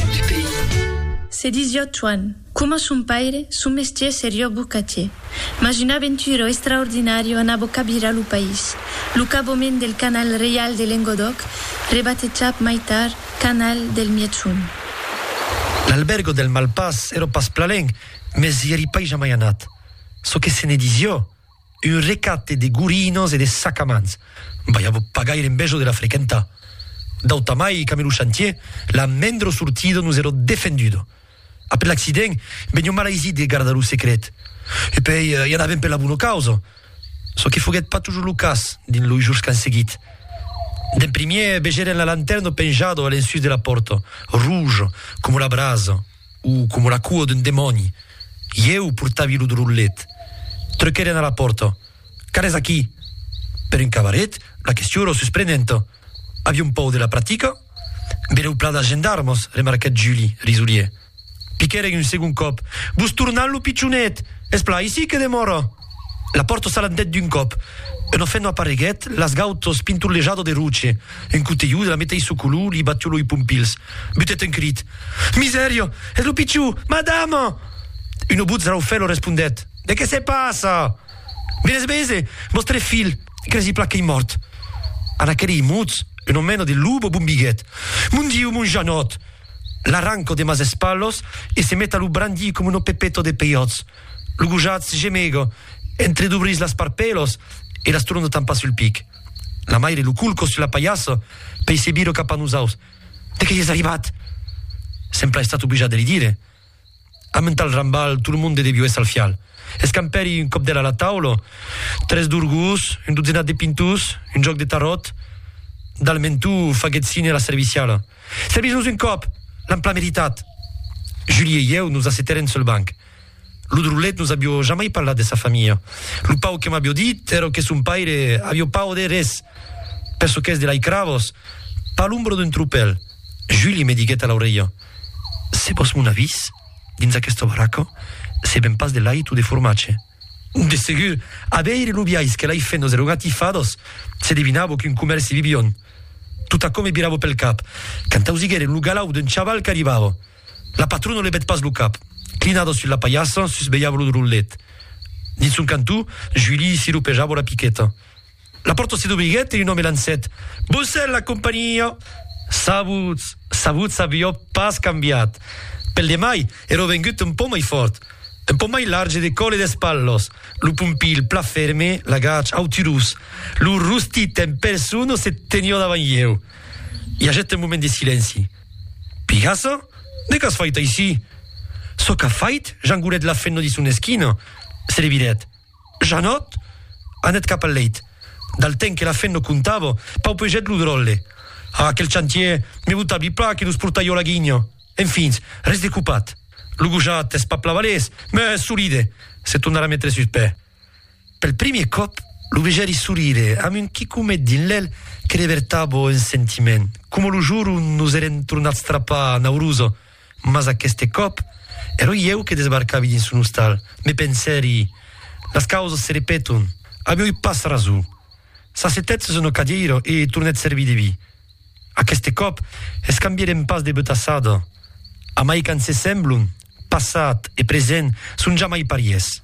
du pays. Se disió Tuan. Coma son paire, son mestier serió bocatier. Mas un aventuro extraordinario anabó cabirar lo país. Lo cabomèn del canal reial de Lengodòc, rebatejap mai tard canal del Miègson. L'albergo del Malpàs, ero pas plalenc, mes i eri pas jamai anat. Çò que se ne disió, Un recate de gorinos e de sacamans. Vai a vos pagar er envejo de la frequentar. D'autamai qu'amé lo chantier, la mendro sortido nos ero defendudo. Après l'accident, venió mal aisit de gardar lo secret. E pei, i anavem per la bona causa. Çò que foguèt pas tujor lo cas dins los jors qu'an seguit. D'en primièr vegèren la lanterna penjada a l'ensús de la pòrta, rouge coma la brasa. o coma la cua d'un demòni. Ieu portavi lo drollet. Truquèren a la pòrta. Qu'alètz aquí? Per un cabaret, la question èra susprenenta. Avion paur de la practica? Benèu plan de gendarmas, remarquèt Juli, risolier. Piquèren un segond còp. Vos tornan lo pichonet! Es plan aicí que demòra! La pòrta s'alandèt d'un còp. Una fenwa apareguèt, las gautas pinturlejada de roche. Un cotelhut de la meteissa color li batió loi pompils. Butèt un crit. Misèria! Es lo pichon! Madama! Una votz raufèla respondèt. De qué se passa? Bien es bese! Vòstre filh, cresi plan qu'ei mòrt. En aquerei mots, una mena de luba bombiguèt. Mon Diu, mon Janòt! L'arranca de mas espalhas e se met a lo brandir coma una pepeta de peiòts. Lo gojatz gemega, entredubrís las parpèlas e las torna tampar sul pic. La maire lo colca sus la paiassa pei se vira cap a nosaus. De qué ies arribat? Sempla estat oblijat de li dire. Amb un tal rambal, tot lo monde devió èsser al fial. Escampèri un còp d'ela a la taula, tres dorgós, un dotzenat de pintós, un jòc de taròt. Dal mentó faguèt sine a la serviciala. Servís-nos un còp! L'am plan meritat! Julie e ieu nos assetèrem sul banc. Lo drolet nos avió jamai parlat de sa familha. Lo pauc que m'avió dit èra que son paire avió pas auder res. Per çò qu'es de lai Cravos, pas l'ombra d'un tropèl. Julie me diguèt a l'aurelha, Se vos mon avis, dins aquesta baraca, se ven pas de lait o de formatge. De segur, a veire lo biais que lai fent los erogatifadors, se devinava qu'un comèrci vivion. Tot aquò me virava pel cap, quand ausiguèrem lo galau d'un chaval qu'arribava. La patrona levèt pas lo cap. Clinada sus la palhassa, susvelhava lo drollet. Dins son cantó, Julie siropejava una piqueta. La pòrta se dobriguèt e un òme lancèt, Boncèl, la companhiá! Sabuts! Sabuts aviá pas cambiat. Pel demai, èra vengut un pauc mai fòrt. Un pauc mai large de còl e d'espatlas. Lo pompilh, plan ferme, lagach, auturós. Lo rostit en persona se teniá davant ieu. I agèt un moment de silenci. Pigassa? De qu'as fait aicí? Çò qu'a fait Jangolet l'a fenno dins son esquina, se le vidèt. Janòt anèt cap al leit. Dal temps que la fenno contava, paupegèt lo dròlle. Ah, quel chantier! Me vota bi plan que nos portai ò la guinha! Enfins, res de copat. Lo gojat es pas plan balés, mès solide. Se tornarà metre sus pè. Pel primier còp, lo vejèri sorire, amb un quicomet dins l'èl que ne vertabo un sentiment, coma lo jour ont nos èrem tornats trapar a Nauruza, mas aqueste còp, èra ieu que desbarcavi dins son ostal. Me pensèri, Las causas se repeton, avioi pas rason. s'assetèt sus una cadièira e tornèt servir de vi. Aqueste còp, escambièrem pas de betassada. Amai qu'an se semblon, passat e present son jamai parièrs.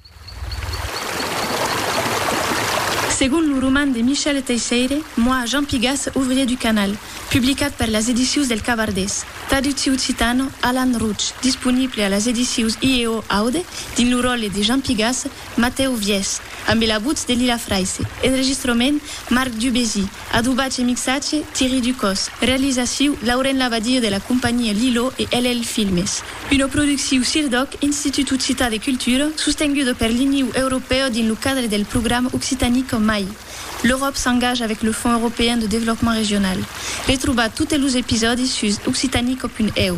Segon lo roman de Michel Teisseire, Moi, Jean Pigas, ouvrier du canal, publicat per las edicius del Cavardés, traducciu occitano, Alan Routch, disponible a las edicius IEO Aude dins lo ròtle de Jean Pigas, Matèu Vièch, ambe la votz de Lila Fraisse. Enregistrament, Marc Dubézy. Adobatge e mixatge, Thierry Ducos. Realizaciu, Lauren Labadie de la companhia Lilo e LL Filmes. Una producciu CIRDOC, Institut Occitan de Cultura, sostenguda per l'Iniu Europèu dins lo cadre del programa Occitanie qu'en mai. L'Euròp s'engaja avec le Fonds Européen de Développement Régional. Retrobatz totes los episòdis sus occitanico.eu.